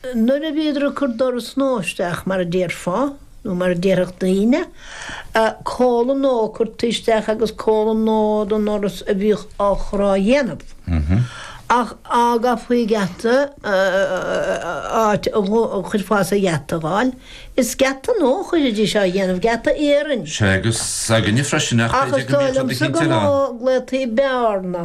Nuair a bhíodar ag cur doras nua isteach, mar a déarfá, nó mar a déarfadh daoine, comhla nua curtha isteach agus comhla nua don ndoras a bhíodh á chur á dhéanamh. Ach fhága faoi gheata áit a chuirfeása a gheata dh'fháil. Is geata nua a chuirfidís á dhéanamh, geata iarainn. Sea, agus s'againne freisin, ach b'fhéidir go mbíonn siad ag cinntear an. Ach is dóigh liomsa gur mó a glaotaí bearna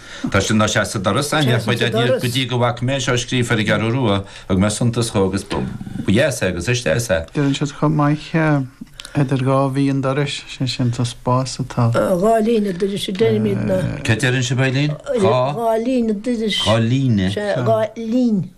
Tá sin ná seas sa doras, Áine, ach by dad níl go dtí go bhfaca mé seo scríofa ar an gCeathrú Rua thug mé suntas dhó agus ba dheas é agus is deas é. Deireann siad chomh maith idir dhá bhí an dorais, sé sin tá spás atá. Dhá lí an dorais a deirimidne. Cad deireann sibh Eileen? Dhá. Dhá lí an dorais. Dhá lí. Dhá lí.